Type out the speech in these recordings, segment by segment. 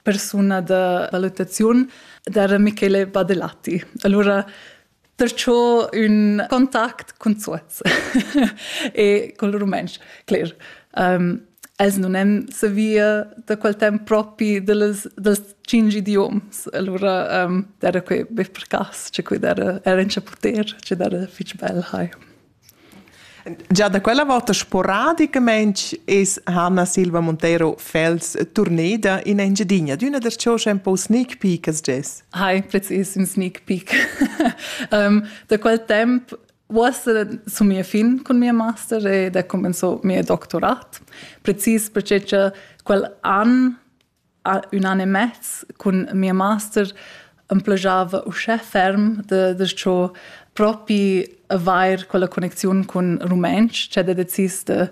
persuna da valutaziun da Michele Badelatti. Allora perciò un contact con Zuoz e col rumantsch, cler. Um, els non èn savia da quel temp propi dels, dels cinc idioms. Allora um, era quei be per cas, cioè quei era, era in chaputer, cioè era fitch bel, hai. Già da quella volta sporadicamain es Hanna Silva Montero Fels turneda in Engiadina, d'üna der choscha un po sneak peek as gess. Hi, precis, un sneak peek. um, da quel temp uossa sun mia fin cun mia master ed ha comenzò mia doctorat, precis perche cha quel an ün an e mez cun mia master am plajava uschè ferm da da cho propi avair quella connecziun cun rumentsch ch'd he decis da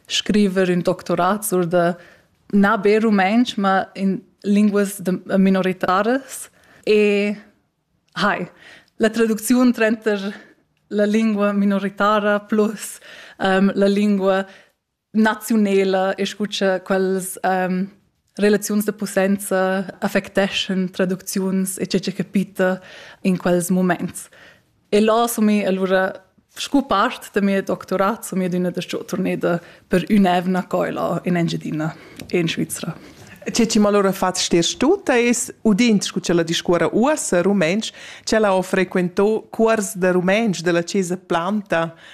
scriver ün doctorat sur da na be rumentsch, ma in linguas da minoritaras e hai la traducziun tranter la lingua minoritara plus, la lingua naziunela e scu cha quels um, relaziuns de possenza affecteschan traducziuns e ce che capita in quels moments. E là so mi allora scu part de mio doctorat so mi d'una de sto torneda per un'evna coila in Engiadina e in Svizzera. Ce ci allora fatto stir tuta es udint scu ce la discuora uossa rumensch, ce la ho frequento cuors de rumensch della Chiesa Planta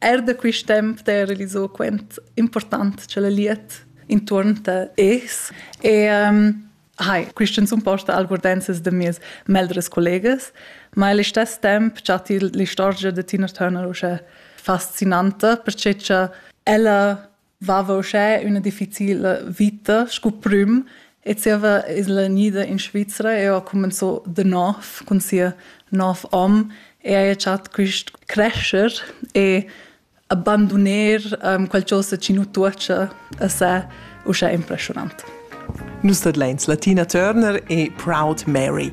Er da quist temp d'he realiso quant important cha la liet intuorn ta es e um, Hai, quisten sun posta algordenzas da mies meldres collegas, ma al istess temp chatti l'istorgia da Tina Turner usche fascinanta, perche cha ella vava uschè üna difficila vita scu prüm e zieva es'la gnida in Svizra e ho cumenzò da nouv cun sia nov hom e haja chat quist crescher e abanduner um, qualchosa chi nu tuocha a se uschè impressionant. Nus tadlains Latina Turner e Proud Mary.